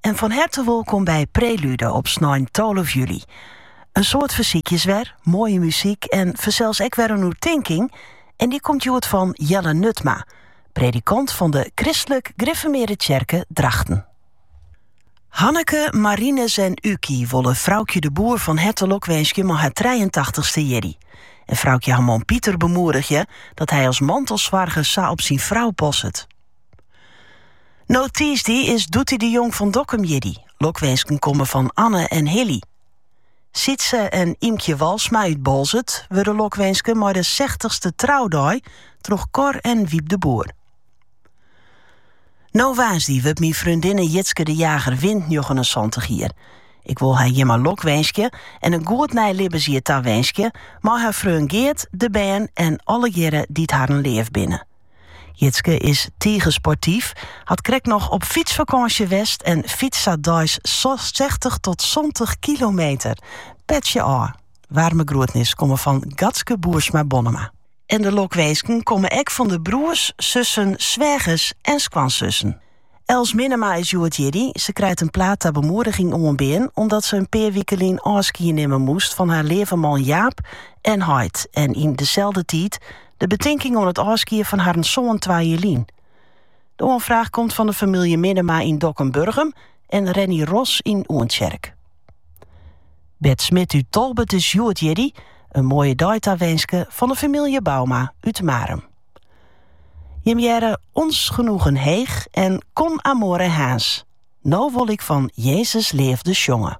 en fan herte wolkom by Prelude op snein 12 july. In soad fersykjes wer, moaie muzyk en fansels ek wer in oertinking en dy komt hjoed fan Jelle Nutma, predikant fan de Kristlik Griffermearde Tsjerke Drachten. Hanneke, Marinus en Uky wolle Froukje de Boer fan herte lokwinskje mei har trijeentachtichste jierdei. En Froukje har man Pieter bemoedigje dat hy as mantelsoarger sa op syn frou passet. No tiisdei is Doetie de Jong fan Dokkum jierdei. Lokwinsken komme fan Anne en Hilly. Sietse en Imkje Walsma út Boalsert wurde lokwinske mei de 60ste troudei troch Cor en Wiep de Boer. No woansdei wurdt myn freondinne Jitske de Jager Wint 79 jier. Ik wol har hjirmei lokwinskje en in goed nij libbensjier tawinskje mei har freon Geart, de bern en allegearre dy't harren leaf binne. Jitske is tige sportyf, hat krekt noch op fytsfakânsje west en fytst sa deis sechstich tot santich kilometer. Petsje ôf. Waarme groetnis komme fan Gatske Boersma-Bonnema. En de lokwinsken komme ek fan de broers, sussen, swêgers en skoansussen. Els Minnema is hjoed jierdei. Se krijt in plaat ta bemoediging oanbean omdat se in pear wike lyn ôfskie nimme moest fan har leave man Jaap en heit en yn deselde tiid de betinking oan it ôfskie fan harren soan twa jier lyn. De oanfraach komt fan de famylje Minnema yn Dokkum, Burgum en Renny Ros yn Oentsjerk. Bert Smit út Tolbert is hjoed jierdei. In moaie dei tawinske fan de famylje Bouma út Marum. Jim hearre Ons Genoegen Heech en Con Amore Harns. No wol ik fan Jezus leafde sjonge.